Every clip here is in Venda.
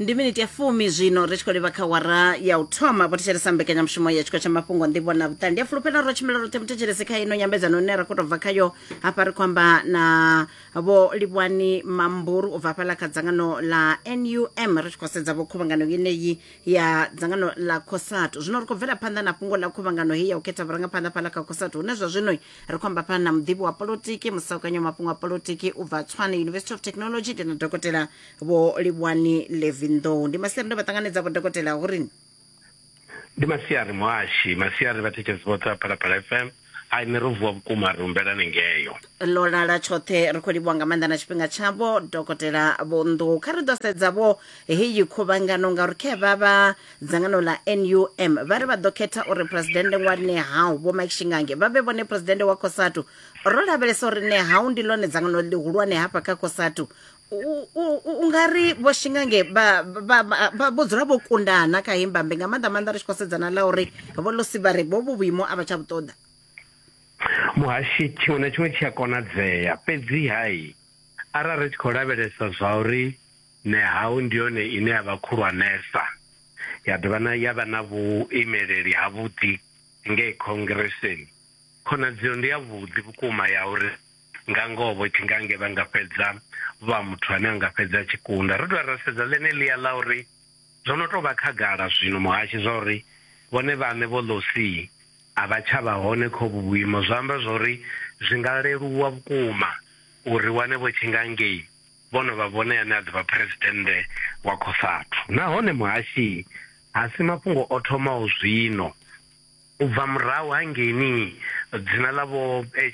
ndi miniti ya fumi zwino ri tshi khou livha kha wara ya u thoma vho thetshelesa mbekanyamushumo ya tshiko tsha mafhungo ndivho na vhuṱali ndi a fulufhela ro tshimbila roṱhe muthetshelesi kha ino nyambedzano ine ra khou tou bva khayo hafha ri khou amba na vho livhuwani mamburu u bva hafhaḽa kha dzangano la num ri tshi khou sedza vho khuvhangano yeneyi ya dzangano la cosatu zwino ri khou bvela phanḓa na fhungo ḽa khuvhangano heyi ya u khetha vhurangaphanḓa fhaḽa kha cosatu hune zwa zwino ri khou amba fhano na muḓivhi wa polotiki musaukanya wa mafhungo a polotiki u bva tswane university of technology ndi na dokotela vho livhuwani levinḓou ndi masiari ndo vha ṱanganedza vho dokotela hu rini ndi masiari muhashi masiari vhathetshelesi vhoṱhe vha phalaphala fm ai ni ro vuwa vhukuma ri humbela ni ngeyo ḽo lala tshoṱhe ri khou livhuwa nga maanḓa na tshifhinga tshavho dokotela vho nḓou kha ri ḓo sedza vho heyi khuvhangano ngauri khe vha vha Dzangano ḽa NUM vha ri vha ḓo khetha uri Phresidennde Ngwani Nehawu Vho Mike Shingange vha vhe vhone Phresidennde wa Cosatu. Ro lavhelesa uri Nehawu ndi ḽone dzangano ḽihulwane hafha kha Cosatu. U nga ri Vho Shingange vho dzula vho kundana kha heyi mbambe nga maanḓa maanḓa ri tshi khou sedza na ḽa uri Vho Losi vha ri vhovhu vhuimo a vha tsha vhu ṱoḓa. Muhashi, Tshiṅwe na tshiṅwe tshi a konadzea, fhedzi-ha arali ri tshi khou lavhelesa zwa uri. Nehau ndi yone ine ya vha khulwanesa ya dovha na ya vha na vhuimeleli havhuḓi ngei Khongireseni. Khonadzeo ndi yavhuḓi vhukuma ya uri nga ngoho vho Tshingange vha nga fhedza vha muthu ane a nga fhedza a tshi kunda. Ro dovha ra sedza ḽeneḽia ḽa uri zwo no tou vha khagala zwino, Muhashe, zwa uri vhone vhaṋe Vho Lossie a vha tsha vha hone kha uvhu vhuimo zwa amba zwa uri zwi nga leluwa vhukuma uri ri wane Vho Tshingange. Vho no vha vhone ane a ḓo vha Phresidennde wa Cosatu. Nahone Muhashi ha si mafhungo o thomaho zwino. U bva murahu ha ngeni dzina ḽa Vho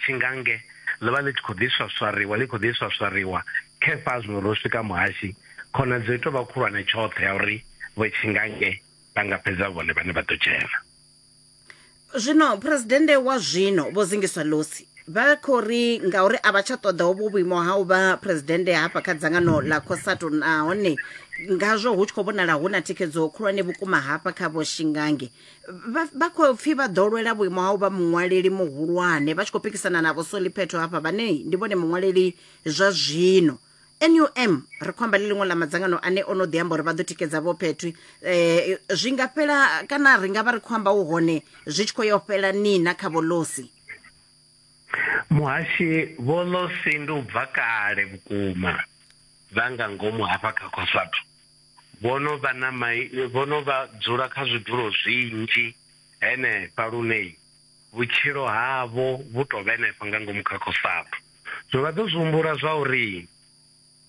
Tshingange ḽo vha ḽi tshi khou ḓi swaswariwa, ḽi khou ḓi swaswariwa, khefha zwino ro swika Muhashi, khonadzeo i tou vha khulwane tshoṱhe ya uri Vho Tshingange vha nga fhedza vhone vhane vha ḓo dzhena. zwino phuresidennde wa zwino vho zingiswa losi vha khou ri ngauri a vha tsha ṱoḓa hovho vhuimo ha u vha phuresidennde hafha kha dzangano ḽa cosato nahone ngazwo hu tshi khou vhonala hu na thikhedzo khulwane vhukuma hafha kha vho shingange vha khou pfhi vha ḓo lwela vhuimo ha u vha muṅwaleli muhulwane vha tshi khou pikisana na vho soliphetho hafha vhane ndi vhone muṅwaleli zwa zwino NUM ri khou amba ḽi ḽiṅwe ḽa madzangano ane o no ḓi amba uri vha ḓo tikedza vho Phetwi eh zwi nga fhela kana ri nga vha ri khou amba u hone zwi tshi khou yo fhela ni na kha vholosi Muhashi vholosi ndi u bva kale vhukuma vha nga ngomu hafha kha Cosatu vho no vha na mai vho no vha dzula kha zwidulo zwinzhi henefha lune vhutshilo havho vhu to vhenefho nga ngomu kha Cosatu. Zwo vha ḓo zwi humbula zwauri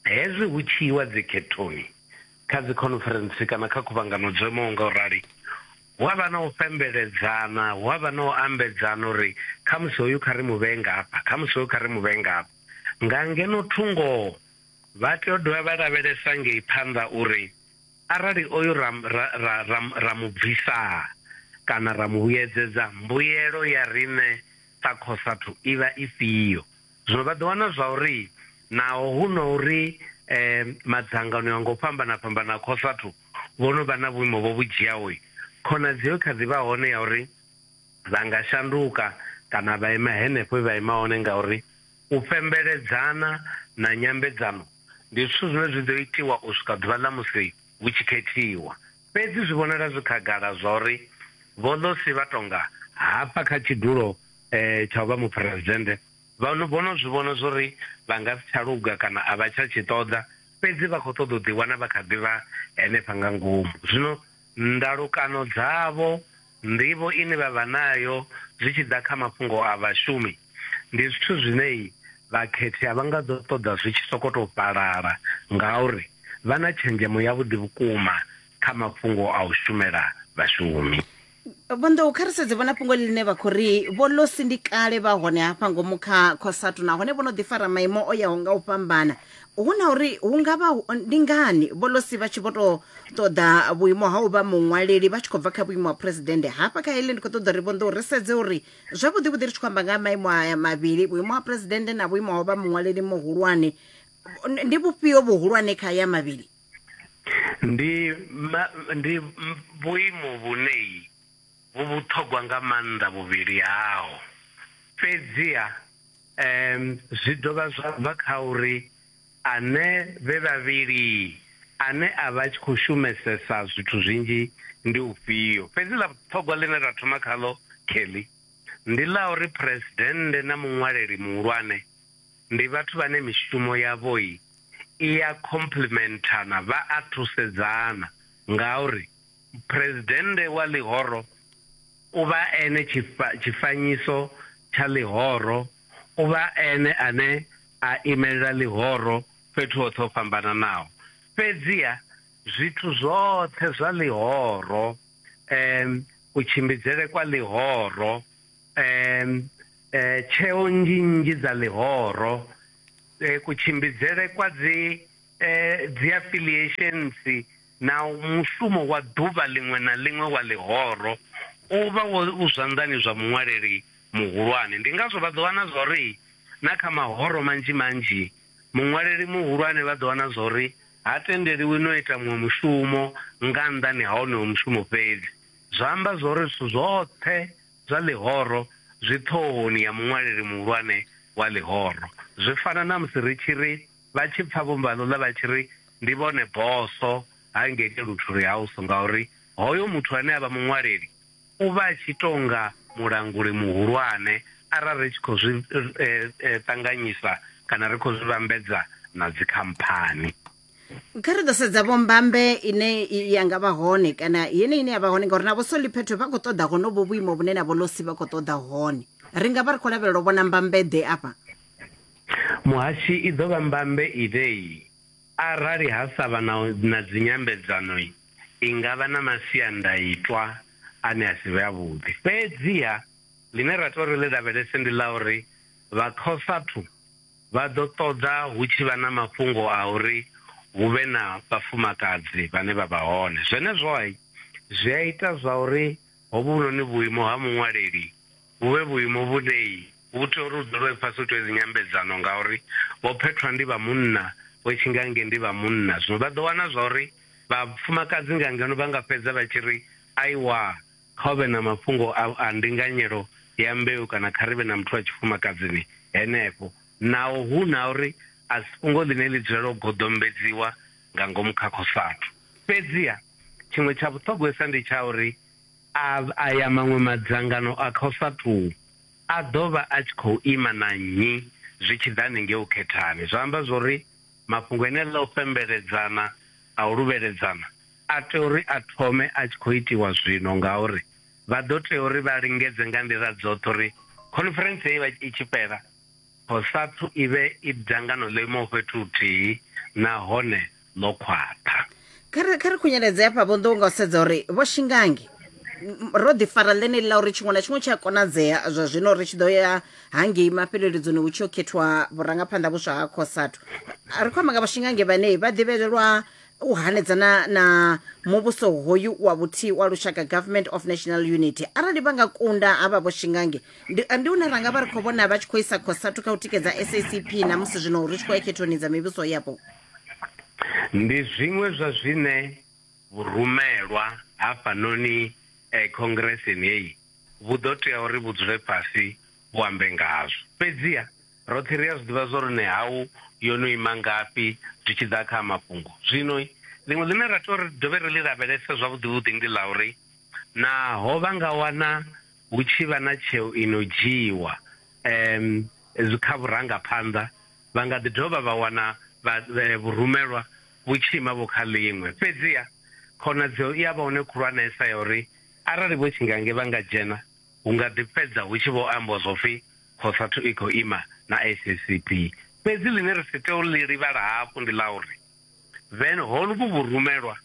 hezwi hu tshi iwa dzikhethoni, kha dzikhonferentsi kana kha khuvhangano dzo imaho nga u rali, hu a vha na u fhembeledzana, hu a vha na u ambedzana uri khamusi hoyu kha ri mu vhee ngafha, khamusi hoyu kha ri mu vhee ngafha. Nga ngeno thungo vha tea u dovha vha lavhelesa ngei phanḓa uri arali oyu ra, ra, ra, ra, ra mu bvisa kana ra mu vhuyedzedza, mbuyelo ya riṋe Sa khosathu i vha ifhio? Zwino vha ḓo wana zwauri naho hu na uri e madzangano a nga u fhambana-fhambana a khosathu vho no vha na vhuimo vho vhu dzhiaho, khonadzeo i kha ḓi vha hone ya uri vha nga shanduka kana vha ima henefho he vha ima hone ngauri u fhembeledzana na nyambedzano ndi zwithu zwine zwi ḓo itiwa u swika ḓuvha ḽa musi hu tshi khethiwa. Fhedzi zwi vhonala zwi khagala zwauri Vho Losi vha tonga hafha kha tshidulo tsha u vha Muphuresidennde vha vho no zwi vhona zwauri vha nga si tsha luga kana a vha tsha tshi ṱoḓa, fhedzi vha khou ṱoḓa u ḓiwana vha kha ḓi vha henefha nga ngomu. Zwino ndalukano dzavho. Nḓivho ine vha vha nayo zwi tshi ḓa kha mafhungo a vhashumi ndi zwithu zwine vhakhethi a vha nga ḓo ṱoḓa zwi tshi sokou tou fhalala ngauri vha na tshenzhemo yavhuḓi vhukuma kha mafhungo a u shumela vhashumi. Vho Nḓou, kha ri sedze vho na fhungo ḽine vha khou ri Vho Losi ndi kale vha hone hafha ngomu kha Cosatu nahone vho no ḓi fara maimo o yaho nga u fhambana hu na uri hu nga vha hu- ndi ngani vholosi vha tshi vho tou ṱoḓa vhuimo ha u vha muṅwaleli vha tshi khou bva kha vhuimo ha phuresidennde hafha kha heḽi ndi khou ṱoḓa uri vhonḓou ri sedze uri zwavhuḓi vhuḓi ri tshi khou amba nga ha maimo aya mavhili vhuimo ha phuresidennde na vhuimo ha u vha muṅwaleli muhulwane Ndi- ndi vhufhio vhuhulwane kha ya mavhili ndi ma- ndi m- vhuimo vhunei vhu vhuṱhogwa nga maanḓa vhuvhili hao fhedziha Zwi dovha zwa bva kha uri ane vhe vhavhili ane a vha a tshi khou shumesesa zwithu zwinzhi ndi ufhio. Fhedzi ḽa vhuṱhogwa ḽine ra thoma khaḽo, Kelly, ndi ḽa uri Phresidennde na Muṅwaleli Muhulwane ndi vhathu vhane mishumo yavho i a khomplementhana, vha a thusedzana, ngauri Phresidennde wa ḽihoro, U vha ene tshifha, tshifanyiso tsha ḽihoro. U vha ene ane a imelela ḽihoro fhethu hoṱhe ho fhambananaho. Fhedziha zwithu zwoṱhe zwa ḽihoro, um, kutshimbidzele kwa ḽihoro, um, tsheo nnzhi nnzhi dza ḽihoro, kutshimbidzele kwa dzi, um, dzi affiliations, Naho mushumo wa ḓuvha ḽiṅwe na ḽiṅwe wa ḽihoro u vha wo u zwanḓani zwa muṅwaleli muhulwane, ndi ngazwo vha ḓo wana zwa uri na kha mahoro manzhi manzhi muṅwaleli muhulwane vha ḓo wana zwa uri ha tendeliwi no ita muṅwe mushumo nga nnḓani ha wonoyo mushumo fhedzi. Zwa amba zwa uri zwithu zwoṱhe zwa ḽihoro zwi ṱhohoni ya muṅwaleli muhulwane wa ḽihoro. Zwi fana na musi ri tshi ri. vha tshi pfa vho mbalula vha tshi ri, Ndi vhone bosso ha ngei Luthuli House ngauri hoyo muthu ane a vha muṅwaleli u vha a tshi tou nga mulanguli muhulwane arali ri tshi khou zwi ṱanganyisa kana ri khou zwi vhambedza na dzikhamphani. Kha ri ḓo sedza vho mbambe ine ya nga vha hone kana yeneyi ine ya vha hone ngauri na vho Soliphetho vha khou ṱoḓa honovho vhuimo vhune na vho Losi vha khou ṱoḓa hone. Ri nga vha ri khou lavhelela u vhona mbambe-ḓe afha? Muhashi, I ḓo vha mbambe ivhe-i? Arali ha sa vha na dzinyambedzano, i nga vha na masiandaitwa ane a si vhe avhuḓi. Fhedziha ḽine ra tea uri ḽi lavhelese ndi ḽa uri vha Cosatu vha ḓo ṱoḓa hu tshi vha na mafhungo a uri hu vhe na vhafumakadzi vhane vha vha hone. Zwenezwo zwi a ita zwa uri hovhunoni vhuimo ha muṅwaleli vhu vhe vhuimo vhune Hu tea uri hu dzulwe fhasi hu itwe dzi nyambedzano ngauri vho phethwa ndi vha munna vho tshi nga nge ndi vha munna zwino vha ḓo wana zwa uri vha fumakadzi nga ngeno vha nga fhedza vha tshi ri aiwaa kha hu vhe na mafhungo a a ndinganyelo ya mbeu kana kha ri vhe na muthu wa tshifumakadzini henefho naho hu na uri a si fhungo ḽine ḽi dzulela u goḓombedziwa nga ngomu kha khosathu. Fhedziha tshiṅwe tsha vhuṱhogwesa ndi tsha uri a a ya maṅwe madzangano a khosathu. A ḓo vha a tshi khou ima na nnyi zwi tshi ḓa hanengei u khethani? Zwa amba zwo ri mafhungo enela a u fhembeledzana, a u luvheledzana a tea uri a thome a tshi khou itiwa zwino ngauri vha ḓo tea uri vha lingedze nga nḓila dzoṱhe uri khoniferentse heyi vha i tshi fhela, Cosatu i vhe i dzangano ḽo imaho fhethu huthihi nahone. ḽo khwaṱha kha ri kha ri khunyeledze hafha vho nḓou nga u sedza uri vho shingangi m- ro ḓi fara ḽeneli ḽa uri tshiṅwe na tshiṅwe tshi a konadzea zwa zwino ri tshi ḓo ya hangei mafheleledzoni hu tshi yo khethiwa vhurangaphanḓa vhuswa ha cosatu A ri khou amba nga vho shingangi vhane vha ḓivhelelwa u hanedzana na muvhuso hoyu wa vhuthihi wa lushaka government of national unity arali vha nga kunda havha vho shingangi ndi ndi hune ra nga vha ri khou vhona vha tshi khou isa cosatu kha u tikedza sacp na musi zwino ri tshi khou ya khethoni dza mivhuso yapo ndi zwiṅwe zwa zwine vhurumelwa hafhanoni eh, khongireseni heyi vhu ḓo tea uri vhu dzule fhasi vhu ambe ngazwo fhedziha roṱhe ri a zwi ḓivha zwo ri nehau yo no ima ngafhi zwi tshi ḓa kha mafhungo zwino ḽiṅwe ḽine ra tea uri dovhe ri ḽi lavhelese zwavhuḓi vhuḓi ndi ḽa uri naho vha nga wana hu tshi vha na tsheo ino dzhiiwa um kha vhurangaphanḓa vha nga ḓi dovha vha wana vhurumelwa vhu tshi ima vho kha ḽiṅwe. Fhedziha, khonadzeo i a vha hone khulwanesa ya uri arali vho tshingange vha nga dzhena, hu nga ḓi fhedza hu tshi vho ambwa zwo pfi Cosatu i khou ima na SACP. Fhedzi ḽine ri si tei u ḽi livhala hafhu ndi ḽa uri vhen hovhu vhurumelwa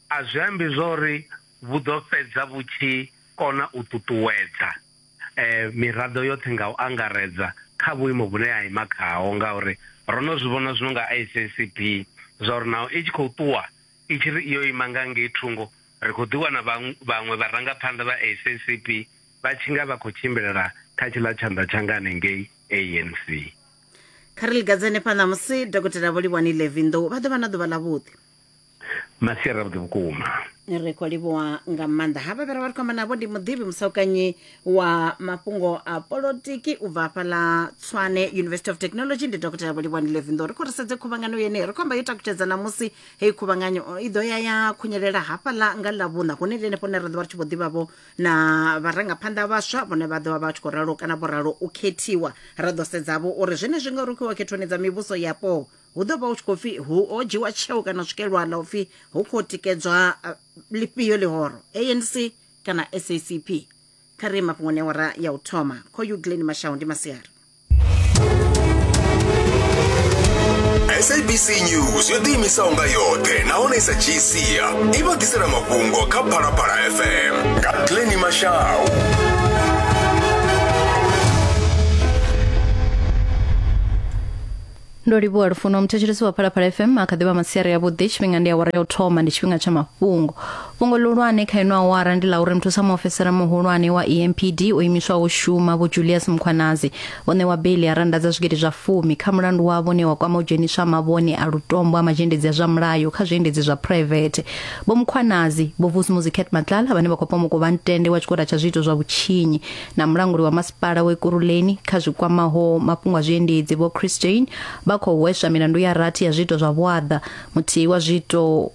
a zwi ambi zwa uri vhu ḓo fhedza vhu tshi kona u ṱuṱuwedza miraḓo yoṱhe nga u angaredza kha vhuimo vhune ya ima khaho ngauri ro no zwi vhona zwino nga SACP zwa uri naho i tshi khou ṱuwa i tshi ri iyo ima nga ngei thungo ri khou ḓiwana vhaṅwe vharangaphanḓa vha SACP vha tshi nga vha khou tshimbilela kha tshiḽa tshanḓa tsha nga hanengei ANC. Kha ri lingadzane phanḓa musi Dokotela Vho Livhuwani Levi Nḓou vha ḓo vha na ḓuvha ḽavhuḓi. masiari avhuḓi vhukuma ri khou livhuwa nga maanḓa havha vhera vha ri khou amba navho ndi muḓivhi musaukanyi wa mafhungo a polotiki u bva hafha ḽa tswane university of technology ndi dokotela vhulivhani levindo ri khou ri sedze khuvhangano yeneyi ri khou amba yo takutshedza ṋamusi heyi khuvhanganyo i ḓo ya ya khunyelela hafha ḽa nga ḽa vhuṋa hune ndi henefho hune ra ḓo vha ri tshi vho ḓivhavho na vharangaphanḓa vhaswa vhone vha ḓo vha vha tshi khou ralo kana vho ralo u khethiwa ra ḓo sedzavho uri zwenezwi ngauri u khou wa khethoni dza mivhuso yapo hu ḓo vha hu tshi khou pfi hu o dzhiwa tsheo kana swikelwa ḽa u pfi hu khou tikedzwa eh, ḽifhio ḽihoro anc kana sacp kha ri mafhungoni awara ya u thoma kho ugleni mashau ndi masiari sabc news yo ḓiimisaho nga yoṱhe nahone i sa dzhii sia i vha ḓisela mafhungo kha phalaphala fm nga gleni mashau ndo livhuwa lufuno muthetshelesi wa phalaphala fm a kha ḓivha masiari yavhuḓi tshifhinga ndi awara ya u thoma ndi tshifhinga tsha mafhungo fhungo ḽihulwane kha ino awara ndi ḽa uri muthusa muofisara muhulwane wa empd o imiswaho shuma vho julius mkhwanazi o ṋewa beili ya randa dza zwigidi zwa fumi kha mulandu wavho ne wa kwama u dzheniswa mavhone a lutombo a mazhendedzi a zwa mulayo kha zwiendedzi zwa private vho mkhwanazi vho vusumuzi cat matlala vhane vha khou pomoka u vha ntende wa tshigwada tsha zwiito zwa vhutshinyi na mulanguli wa masipala wa ekuruleni kha zwi kwamaho mafhungo a zwiendedzi vho chris jane vha khou hweswa milandu ya rathi ya zwiito zwa vhuaḓa muthihi wa zwiito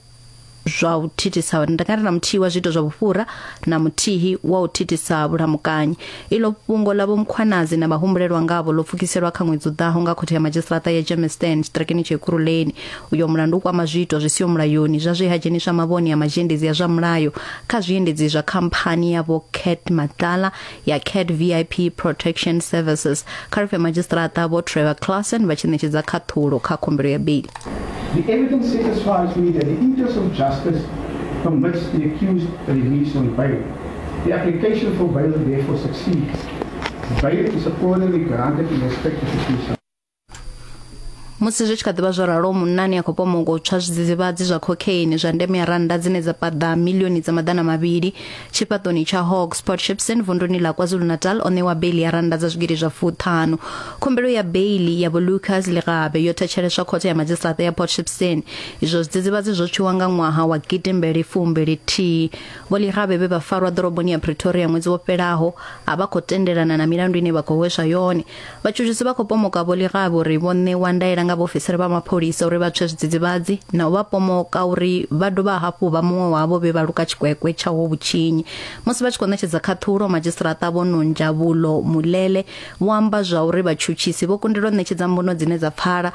zwa u thithisa ndakati na muthihi wa zwiito zwa vhufhura na muthihi wa u thithisa vhulamukanyi ilo fhungo la vhomkhwanazi na vhahumbulelwa ngavho ḽo pfukiselwa kha ṅwedzi u ḓaho nga khothe ya madzhisiṱaraṱa ya germiston tshiṱirakeni tsha ekuruleni Uyo mulandu u kwama zwiitwa zwi siho mulayoni zwa zwe ha dzheniswa mavhone a mazhendedzi a zwa mulayo kha zwiendedzi zwa khamphani ya vho Cat Matlala ya Cat VIP Protection Services kha ri pfe madzhisiṱiraṱa vho Trevor Classen vha tshi ṋetshedza khaṱhulo kha khumbelo ya beili. The evidence satisfies me that the interest of justice permits the accused release on bail. The application for bail therefore succeeds. Bail is accordingly granted in respect of the case. musi zwi tshi kha ḓivha zwo ralo munnani a khou pomoka u tswa zwidzidzivhadzi zwa cocaine zwa ndeme ya rannda dzine dza paḓa milioni dza maḓana mavhili tshifhaṱoni tsha hawk sport shipson vunduni ḽa kwazulu-natal o ṋewa beili ya rannda dza zwigidi zwa fuṱhanu khumbelo ya beili ya volucas ligabe yo thetsheleswa khothe ya madzhisiṱaṱa ya port shipson izwo zwidzidzivhadzi zwo tswiwa nga ṅwaha wa gidimbeli fumbili thihi vho ligabe vhe vha farwa ḓoroboni ya pretoria ṅwedzi wo fhelaho a vha khou tendelana na milandu ine vha khou hweswa yone Vhatshutshisi vha khou pomoka Vho Lerabe uri vho ṋewa ndaela nga vhaofisiri vha mapholisa uri vha tswe zwidzidzivhadzi na u vha pomoka uri vha dovha hafhu vha muṅwe wavho vhe vha luka tshikwekwe tsha ho vhutshinyi. Musi vha tshi khou ṋetshedza khaṱhulo, Madzhisiṱiraṱa Vho Nonjabulo Mulele vho amba zwa uri vhatshutshisi vho kundelwa u ṋetshedza mbuno dzine dza pfala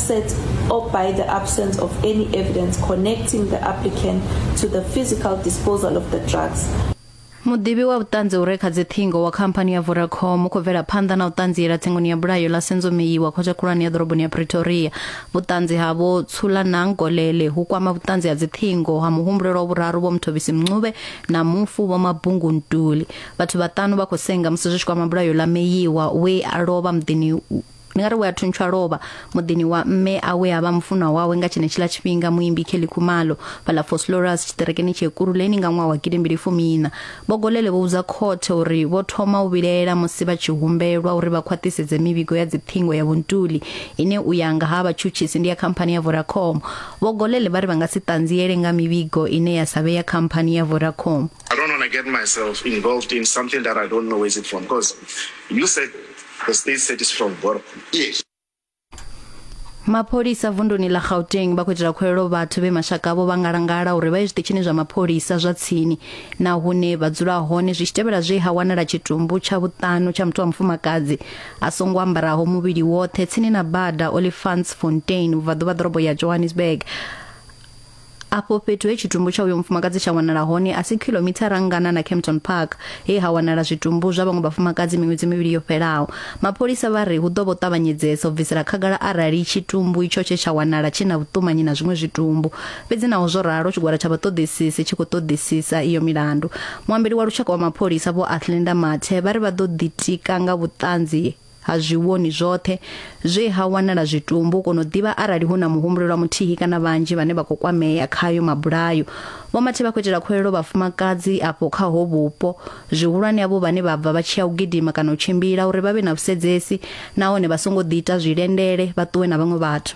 set or by the absence of any evidence connecting the applicant to the physical disposal of the drugs. muḓivhi wa vhuṱanzi u re kha dziṱhingo wa khamphani ya vodacom u khou bvela phanḓa na u ṱanziela tsengoni ya bulayo ḽa senzomeyi wa khothe khulwane ya ḓoroboni ya pretoria vhuṱanzi ha vho tsulanang kolele hu kwama vhuṱanzi ha dziṱhingo ha muhumbulelwa vhuraru vho mthobisi mncube na mufu vho mabungu ntuli vhathu vhaṱanu vha khou senga musi zwi tshi kwama bulayo ḽa meyiwa we a lovha muḓini ndi nga ri we a thuntsha lovha muḓini wa mme a we a vha mufunwa wawe nga tshenetshiḽa tshifhinga muimbi kelly khumalo fhaḽa foslorus tshiṱerekeni tsha ekuruleni nga ṅwaha wa gidimbili fumiina bogolele vho vhudza khothe uri vho thoma u vhilaela musi vha tshi humbelwa uri vha khwaṱhisedze mivhigo ya dziṱhingo ya vhuntuli ine u ya nga ha vhatshutshisi ndi ya khamphani ya vodacom bogolele vha ri vha nga si ṱanziele nga mivhigo ine ya sa vhe ya khamphani ya vodacom I don't want to get myself involved in something that I don't know where it's from because you said Because they said it's from Borok. Yes. mapholisa vunduni ḽa gauteng vha khou itela khuwelelo vhathu vhe mashaka avho vha ngalangala uri vha ye zwiṱitshini zwa mapholisa zwa tsini na hune vha dzula hone zwi tshi tevhela zwe ha wanala tshitumbu tsha vhuṱanu tsha muthu wa mufumakadzi a songo ambaraho muvhili woṱhe tsini na bada olifants fontain vhubvaḓuvha ḓorobo ya johannesburg afho fhethu he tshitumbu tsha uyo mufumakadzi tsha wanala hone a si khilomithara ngana na campton park he ha wanala zwitumbu zwa vhaṅwe vhafumakadzi miṅwedzi mivhili yo fhelaho mapholisa vha ri hu ḓo vho ṱavhanyedzesa u bvisela khagala arali tshitumbu itsho tshe tsha wanala tshi na vhuṱumanyi na zwiṅwe zwitumbu fhedzi naho zwo ralo tshigwada tsha vhaṱoḓisisi tshi khou ṱoḓisisa iyo milandu muambeli wa lushaka wa mapholisa vho athlenda mathe vha ri vha ḓo ḓitika nga vhuṱanzi ha zwi vhoni zwoṱhe zwe ha wanala zwitumbu u kona u ḓivha arali hu na muhumbulelwa muthihi kana vhanzhi vhane vha khou kwamea khayo mabulayo vho mathe vha khou itela khwelelo vhafumakadzi afho kha ho vhupo zwihulwane avho vhane vha bva vha tshi ya u gidima kana u tshimbila uri vha vhe na vhusedzesi nahone vha songo ḓi ita zwilendele vha ṱuwe na vhaṅwe vhathu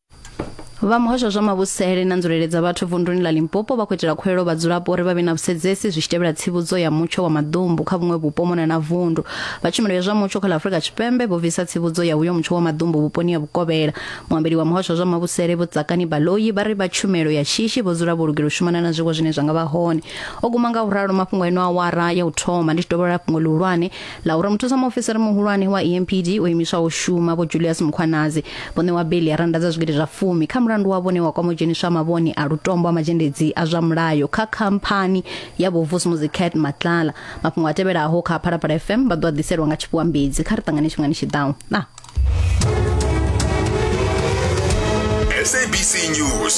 Vha muhasho zwa mavhusele na nzulele dza vhathu vunduni ḽa Limpopo vha khou itela khuwelelo vhadzulapo uri vha vhe na vhusedzesi zwi tshi tevhela tsivhudzo ya mutsho wa maḓumbu kha vhuṅwe vhupo mona na vundu. Vha tshumelo ya zwa mutsho kha ḽa Afrika Tshipembe vho bvisa tsivhudzo ya uyo mutsho wa maḓumbu vhuponi ha Vhukovhela. Muambeli wa muhasho zwa mavhusele Vho Tsakani Baloyi vha ri vha tshumelo ya shishi vho dzula vho lugela u shumana na zwiwo zwine zwa nga vha hone. O guma nga u ralo mafhungo a ino awara ya u thoma ndi tshi dovholola fhungo ḽihulwane laura muthusa muofisiri muhulwane wa empd o imiswaho shuma vho julius mukhwanazi vho ṋewa beli ya randa dza zwigidi zwa fumi kha mulandu wa vhone wa kwama u dzheniswa mavhone a lutombo a mazhendedzi a zwa mulayo kha khamphani ya vho vusmuzi cat matlala mafhungo a tevhelaho kha phalaphala fm vha ḓo a ḓiselwa nga tshifhiwa mbedzi kha ri ṱangane tshifhingani tshiḓaho na SABC News